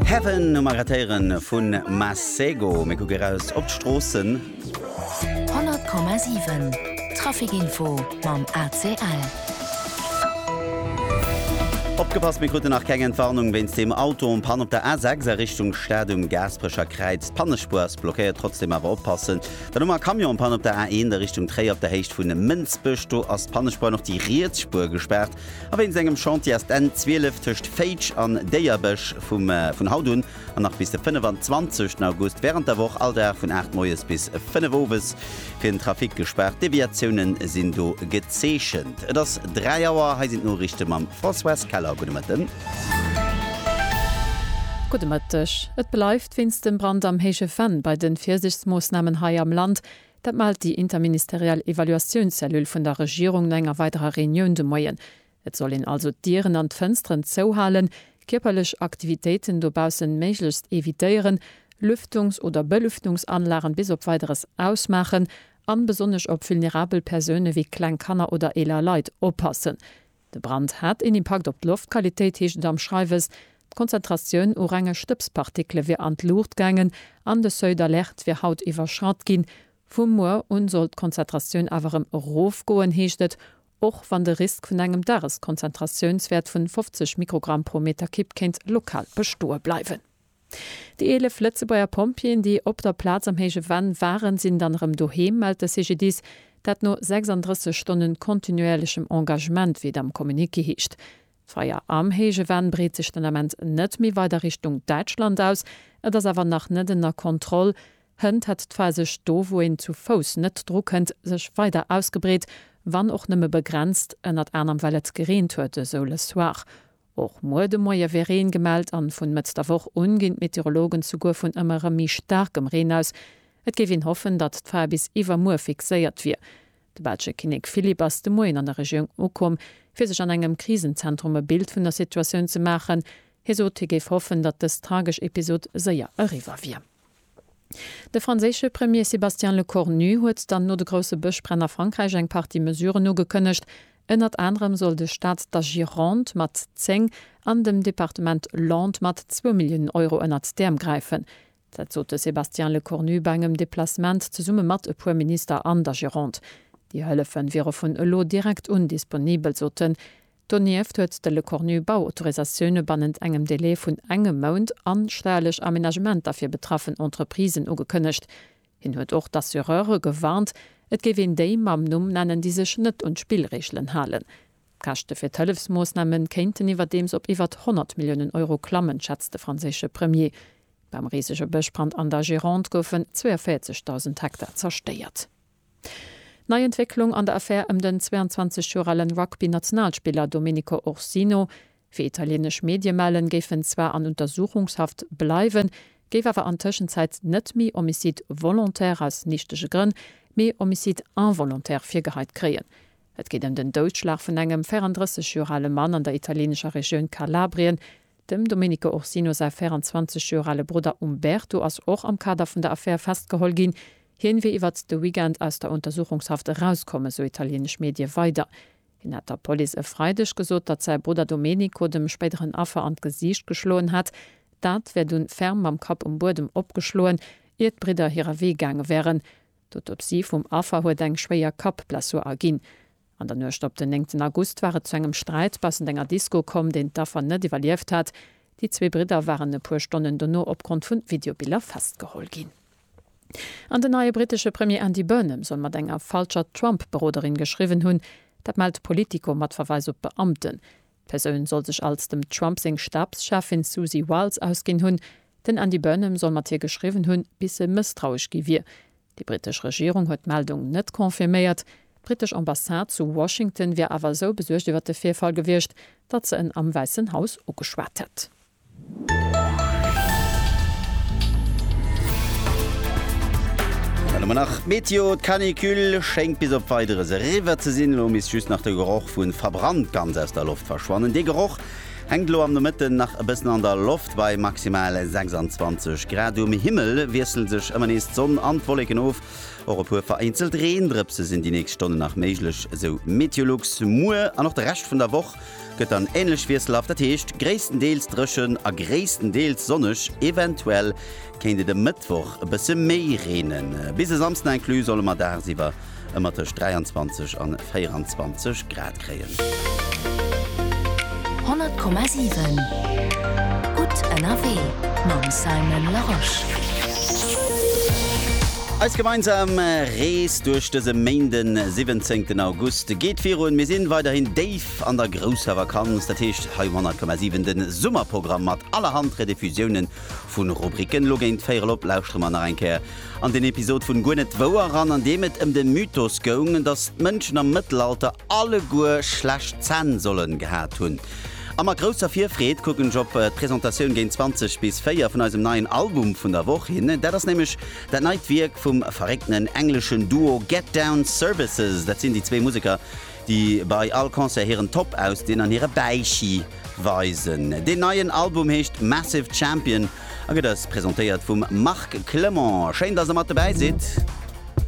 Heaven um Arrêtéiere vu Masego, mir kucke eraus op d'Stroossen. 100,7 Traficinfo mam ACL. Opgepasst, mir kruten nach keng Entwarnung wéinst deem Auto um Pann op der A6 a Richtung Stad um Gaasperecher Kräiz. D'Pannespuer ass blockéiert, trotzdeem awer oppassen. Dann hu mer e Camion um Pann op der A1 a Richtung Tréier op der Héicht vu Mënsbech, do ass d'Pannespuer an och déi riets Spuer gespaart. A wéinst engem Chantier ass d'N 12 tëscht Féitsch an Déierbech vun haut un an nach bis de 25 August wärend der Woch all Dag vun 8 moies bis 5 owes fir den Trafic gespaart. Deviatiounen sinn do gezeechent. Et ass 3 Auer, hei sinn d'Noriichte mam Françoise Keller. Gudde Mëtten. Gudde Mëtteg. Et bleift wéinst dem Brand am Héije Venn bei de Virsiichtsmoossnamen hei am Land. Dat mellt déi interministeriell Evaluatiounscellule vun der Regierung no enger weiderer Reunioun de Moien. Et soll een also d'Dieren an d'Fënsteren zouhalen, kierperlech Aktivitéiten dobaussen méiglechst evitéieren, Lüftungs oder Belüftungsanlagen bis op Weideres ausmaachen an besonnesch op vulnerabel Persoune wéi kleng Kanner oder eeler Leit oppassen. De Brand hat een Impakt op d'Loftqualitéit, heescht et am Schreiwes. D'Konzentratioun u renge Stëbspartikele wier an d'Luucht gaangen an de Seuil d'alerte wier haut iwwerschratt ginn. Vu muer un soll d'Konzentratioun awer erëm erofgoen, heescht et, och wann de Risk vun engem Dageskonzentratiounswäert vun 50 Mikrogramm pro Meterkipp kéint lokal bestoe bleiwen. Déi 11 Lëtzebuerger Pompjeeën, déi op der Plaz am héije Venn waren, sinn dann erëm doheem, mellt de CGDIS. Dat no 36 Stonnen kontinuéierlechem Engagement, wéi et am Communiqué heescht. D'Feier am héije Venn breet sech den Ament net méi weider Richtung Däitschland aus. Et ass awer nach net ënner Kontroll. Hënt hätt d'Feier sech do, wou een zu Fouss net dru kënnt, sech weider ausgebreet, wann och nëmme begrenzt, ënnert anerem well et gereent huet, esou Le Soir. Och muer de Moie wier Reen gemellt an vun Mëtz der Woch un ginn d'Meteorologen souguer vun ëmmer erëm méi staarkem Reen aus. Et géif een hoffen, datt d'Fae bis iwwermuer fixéiert wier. De belsche Kinnek Philippe ass de Moien an der Regioun ukomm, fir sech an engem Krisenzentrum e Bild vun der Situatioun ze maachen. Hie sot, hie géif hoffen, datt dës tragesch Episod séier eriwwer wier. De franséische Premier Sébastien Lecornu huet dann no de grousse Bëschbränn a Frankräich eng Partie Mesuren ugekënnegt. Ënnert anerem soll de Staat der Gironde mat 10 an dem Departement Landes mat zwou Milliounen Euro ënnert d'Äerm gräifen. Dat sot de Sébastien Lecornu bei engem Deplacement zesumme mat e puer Minister an der Gironde. Déi Hëllefe wiere vun elo direkt un disponibel, sot en. Donieft huet de Lecornu Bauautorisatioune bannent engem Delai vun engem Mount an steierlech Amenagementer fir betraffen Entreprisen ugekënnegt. Hien huet och d'Assureure gewarnt, et géif een déi mam Numm nennen, déi sech net un d'Spillreegelen halen. D'Käschte fir d'Hëllefsmoossname kéinten iwwerdeems op iwwert 100 Milliounen Euro klammen, schätzt de franséische Premier. Beim risege Bëschbrand an der Gironde goufen 42.000 Hektar zerstéiert. Nei Entwécklung an der Affär ëm den 22 Joer alen Rugby-Nationalspiller Domenico Orsino. Wéi italieenesch Medie mellen, géif en zwar an Untersuchungshaft bleiwen, géif awer an Tëschenzäit net méi Homicide volontaire aus nichtege Grënn, mee Homicide involontaire virgeheit kréien. Et geet ëm den Doudschlag vun engem 34 Joer ale Mann an der italieenescher Regioun Kalabrien. Dem Domenico Orsino säi 24 Joer ale Brudder Umberto ass och am Kader vun der Affär festgeholl ginn. Hien wier iwwert de Weekend aus der Untersuchungshaft erauskomm, esou italieenesch Medie weider. Hien hätt der Police e Freideg gesot, datt säi Brudder Domenico dem spéideren Affer an d'Gesiicht geschloen hätt. Dat wär dunn ferm mam Kapp um Buedem opgeschloen, ier d'Bridder hirer Wee gaange wären. D'Autopsie vum Affer huet eng schwéier Kappblessur erginn. An der Nuecht op den néngten August war et zu engem Sträit baussent enger Disko komm, deen d'Affer net iwwerlieft hat. Déi zwee Bridder waren e puer Stonnen dono opgrond vu Videobiller festgeholl ginn. An den neie brittesche Premier Andy Burnham soll mat enger falscher Trump-Beroderin geschriwwen hunn. Dat mellt Politico mat Verweis op Beamten. D'Persoun soll sech als dem Trump seng Stabscheffin Susie Wiles ausginn hunn. Den Andy Burnham soll mat hir geschriwwen hunn, bis e mësstrauesch gi wier. Déi brittesch Regierung huet d'Meldung net confirméiert. D'brittesch Ambassade zu Washington wier awer esou besuergt iwwer de Virfall gewiescht, datt se en am Wäissen Haus ugeschwat hätt. An ëmmer nach d'Meteo, D'Canicule schéngt bis op Weideres eriwwer ze sinn. Elo misst just nach de Geroch vu verbrannt ganz aus der Loft verschwannen. Dee Geroch. Hänkt elo am Nomëtten nach e bëssen an der Loft bei maximal 26 Grad. Um Himmel wiessle sech ëmmer nees d'Sonn an d'Wolleken of. Och e puer vereenzelt Reendrëpse sinn déi nächst Stonnen nach méiglech, esou Meteolux. Muer an och de Rescht vun der Woch gëtt dann änlech wiesselhaft, dat heescht gréisstendeels dréchen a gréisstendeels sonneg, eventuell kéint et e Mëttwoch e bësse méi reenen. Bis e Samsden inclus solle mer dagsiwwer ëmmer tëscht 23 a 24 Grad kréien. 100,7 Gutt ënnerwee mam Simon Larosche. Eis gemeinsam Rees duerch dëse Méinde 17 August geet virun. Mir sinn weiderhin déif an der grousser Vakanz, dat heescht hei um 100,7 de Summerprogramm mat allerhand Rediffusiounen Vun Rubriken lo géint véirel op lauschtere mer nach eng Kéier an den Episod vun Guer net wouer eran, an deem et ëm de Mythos goung, dass d'Mënschen am Mëttelalter alleguer schlecht Zänn sollen gehat hunn. A mat grousser Virfreed kucken ech op d'Presentatioun géint 20 bis 4 vun eisem neien Album vun der Woch hin. Dat ass nämlech dat neit Wierk vum verréckten engleschen Duo Get Down Services. Dat sinn déi zwee Museker, déi bei all Concert hiren Top ausdinn an hire Bäichi weisen. Deen neien Album heescht Massive Champion a gëtt eis presentéiert vum Marc Clement. Schéin, dass der mat dobäi sidd!